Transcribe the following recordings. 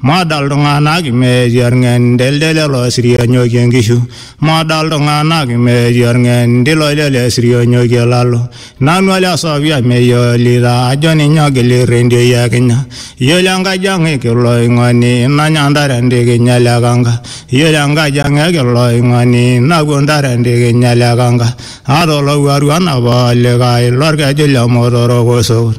Moda iltung'anak imeeti orng'endel lelo sirionyoki enkishu. Moda iltung'anak imeeti orng'endil lele sirionyoki olalo. Nanu ole Sofia meyiolita ajo ninye ogil irrendioi e Kenya. Iyiolo enkaji ang e Kiloing'oni nanya ntare entikinya ele kanka. Iyiolo enkaji ang e Kiloing'oni napuo ntare entikinya ele kanka. Aata olowuaru anapa olikae lorkeju le Motorok Osokut.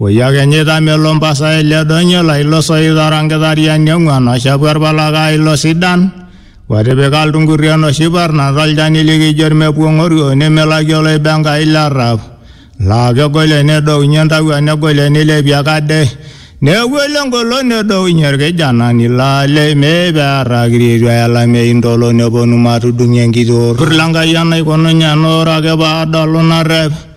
Oiakhenyita melo mpasai le donyo la ilo soit ora nkithariani ong'uan o shapu erpalakaa ilo sidan, otipika ltungurri enoshi parna to lchani likijo lmepuong'orio nemelaki oloibe Enkai le rrap, laa kegolie nedounye ntawua negolie neilepie ekade, negolie engolon nedounye lkijanani, laa le imee pee earrakiri eitu eye olamei ntolo neponu matudung'ie enkiti orrur le Enkai enaikununye ena ore ake pee adolu narrep.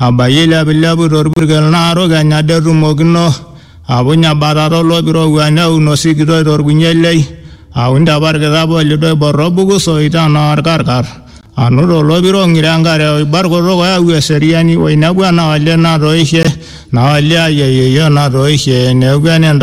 Abayie eilepilepu to lpurkel naaru kenya det tumokino, apuny ebatata o loip oirowua neun osikitoi to lkunyielei, aun te parkitap o lido oibor o buku soi te naa olkarkar, anut o lopiro o ng'iro e nkare o ibar kutuk oyau eseriani, oinepu ena olee natoishe, naa olee ai e yieyo natoishe, neeku ene ntaoni.